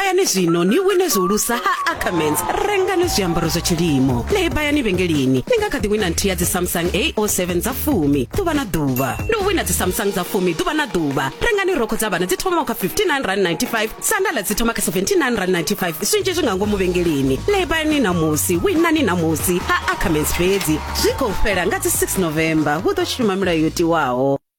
lebayani zwino ni wine zwihulusa ha ackermans rengani zwiambaro zwa tshilimo lebayani vhengeleni ni nga kha ḓi wina nthihi ya dzisamsung ao7 dza fumi ḓuvha na ḓuvha ndi u wina dzisamsung dza fumi ḓuvha na ḓuvha rengani rokho dza vhana dzi thomaho kha 5995 sandala dzi thoma kha 7995 zwinzhi zwi nga ngomu vhengeleni lebayani ṋamusi winani ṋamusi ha ackermans fhedzi zwi khou fhela nga dzi 6 november hu ḓo shuma milayo yo tiwaho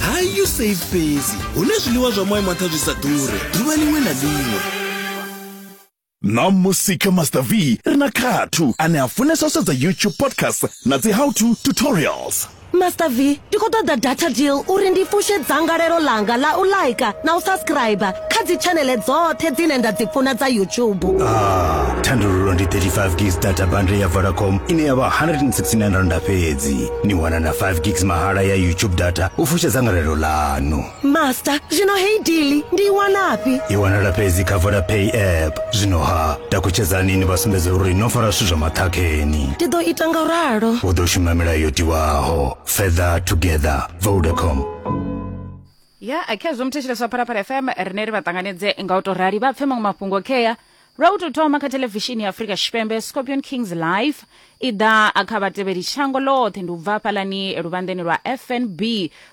ha usafe fhedzi hu na zwiḽiwa zwa moya maṱha zwi sa ḓure ḓuvha liṅwe na liṅwe na musi kha master v ri na khathu ane a funesa u sedza youtube podcast na dzi how to tutorials master v ndi khou ṱoḓa data deal uri ndi fushe dzangalelo langa la u laika na u subscribe kha dzitshanele dzoṱhe dzine nda dzi funa dza youtube ah, thandululo ndi 35 gis data bundle ya vodacom ine ya vha 169 randa fhedzi ni wana na 5 gigs mahala ya youtube data u fusha dzangalelo ḽanu master zwino hei dili ndi i wanafhi i wanala fhedzi kha vodapay app zwino ha takutshedzani ni vha sumbedza uri no fara zwithu zwa maṱhakheni ndi ḓo ita nga ralo u ḓo shuma milayo yo tiwaho further together vodacom ya khezwo muthetsheleswa phalaphala fm rine ri vha ṱanganedze nga u to rali vha pfe maṅwe mafhungo khea Lwa u tou thoma kha theḽevishini ya Afrika Tshipembe, Scorpion Kings Live i ḓa a kha vhatevheli shango ḽoṱhe. Ndi u bva hafhaḽani luvhanḓeni lwa FNB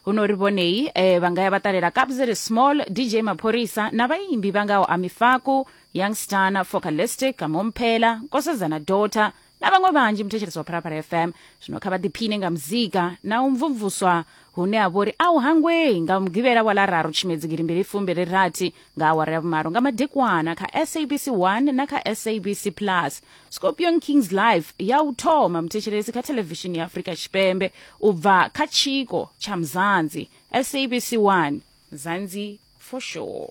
huno ri vhonei e vha nga ya vha ṱalela Kabzeri Small, DJ Maphorisa na vhaimbi vha ngaho Ami Faku, Young Stunner, Focalistic, Kamompela, Nkosazana Daughter, na vhaṅwe vhanzhi muthetshelesi wa phalaphala fm zwino kha vha ḓiphine nga muzika na u mvumvuswa hune ha vhori a u hangwei nga mugivhela wa lararu tshimedzi girimbili fumbili rathi nga awara ya vhumalo nga madekwana kha sabc 1 na kha sabc plus scorpion kings life ya u thoma muthetshelesi kha thelevishini ya afurika tshipembe u bva kha tshiko tsha mzanzi sabc 1 zanzi for sure